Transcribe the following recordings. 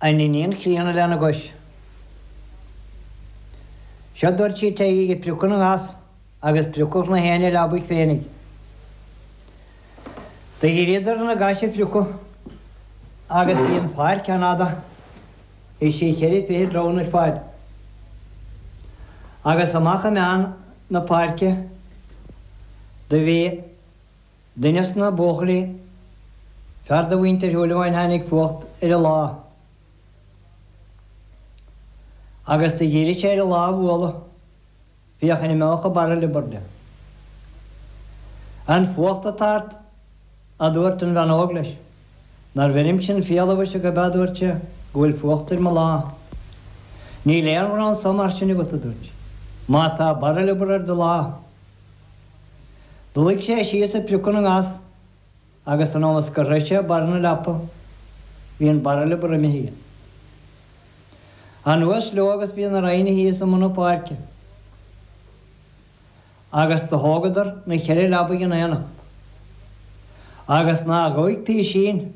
An iníon chríonna lena gcois. Seo dúirt sí téigí ag priocadh na ngas agus priocadh nach éinne a leabaidh féinig. Do dhíríodar ar na gais a phriocadh agus bhí an pháirc an-fhada, bhí sí cheithre fichid rámhainn ar fad. Agus amach i meán na páirce do bhí. Duine sna buachaillí, fear de mhuintir Shúilleabháin tháinig fuacht ar a lámh agus do dhírigh sé ar a lámh a bhualadh, féach an imeóchadh barra liobar de. An fuacht atá ort, aduairt an bhean óg leis. Nár bheirim sin fiala mhuise go bea, aduairt sé, go bhfuil fuacht ar mo lámh? Níl aon ghnó anso mar sin agat, aduairt sí. Má tá barra liobar ar do lámh. Luigh sé síos ag priocadh na ngas agus anuas go shroich sé barr na leapa bhí an barra liobar imithe dhe. Anuas leo agus bhí na rámhainní thíos i mbun na páirce agus do thógadar na cheithre leabaidh in aonacht agus nach ghoidh písín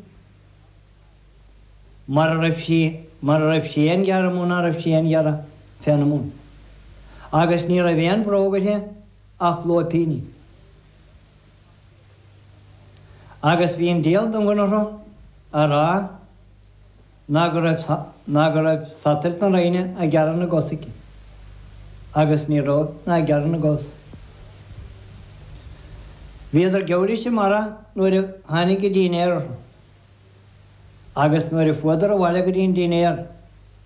mara raibh sí, mara raibh sí aon ghearradh mó ná raibh sí aon ghearradh féna mbun. Agus ní raibh aon bhróg uirthi ach lóipíní. Agus bhí an díol don gconartha a rá ná go raibh, ná go raibh satailt na rámhainne ag gearradh na gcos aici. Agus ní raibh, ná ag gearradh na gcos. Bhíodar geimhridh sa mbarra nuair a tháinig an dinnéar orthu. agus nuair a fuadar abhaile go dtí an dinnéar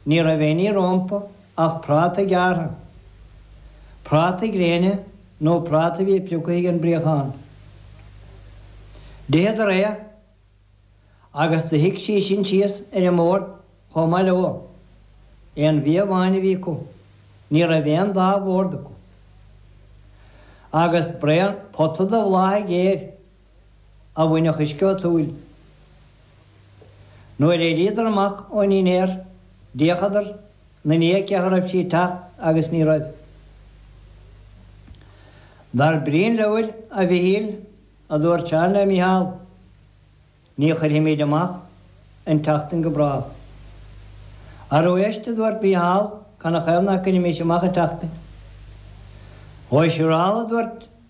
ní raibh éinní rómpa ach prátaí gearrtha, prátaí gréine nó prátaí a bhí prioctha ag an bpríochán. D'itheadar é agus do shuigh sí sin síos ar an mbord chomh maith leo. Aon bhia amháin a bhí acu. Ní raibh aon dá bhord acu. Agus braon pota de bhláthaigh ghéir. a bhainfeadh uisce ód shúil. Nuair éiríodar amach ón ndinnéar d'fhéachadar 'na ndiaidh féach a raibh sí ag teacht agus ní raibh. Dar brí an leabhair, a Mhichíl, a dúirt Seán le Micheál, ní chuirfimíd amach an tseachtain go bráth. Arú éist, a dúirt Micheál, ca' 'na thaobh ná cuirimis amach an tseachtain. Ó, siúrál, a dúirt.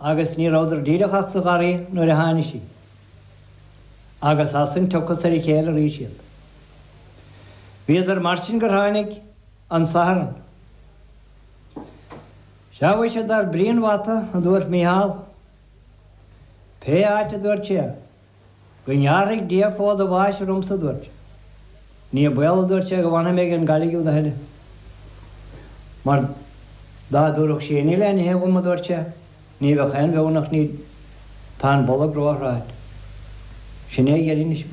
agus ní rabhadar díreach ach sa gharraí nuair a tháinig sí, agus as san tiocfas ar a chéile arís iad. Bhíodar mar sin gur tháinig an Satharn. Seadh mhuise, dar brí an bhata, a dúirt Micheál, pé áit a dúirt sé, Go ngearra Dia fód a bháis ormsa, a dúirt sé. Ní baol, a dúirt sé, go bhfanfaidh mé ag an gcailligh úd a thuilleadh. Mar dá dtabharfadh sí im le n-ithe dhom, a dúirt sé, ní bheadh aon bheoir nach níd. Tá an bolg róshráite. Sin é a gheallínis.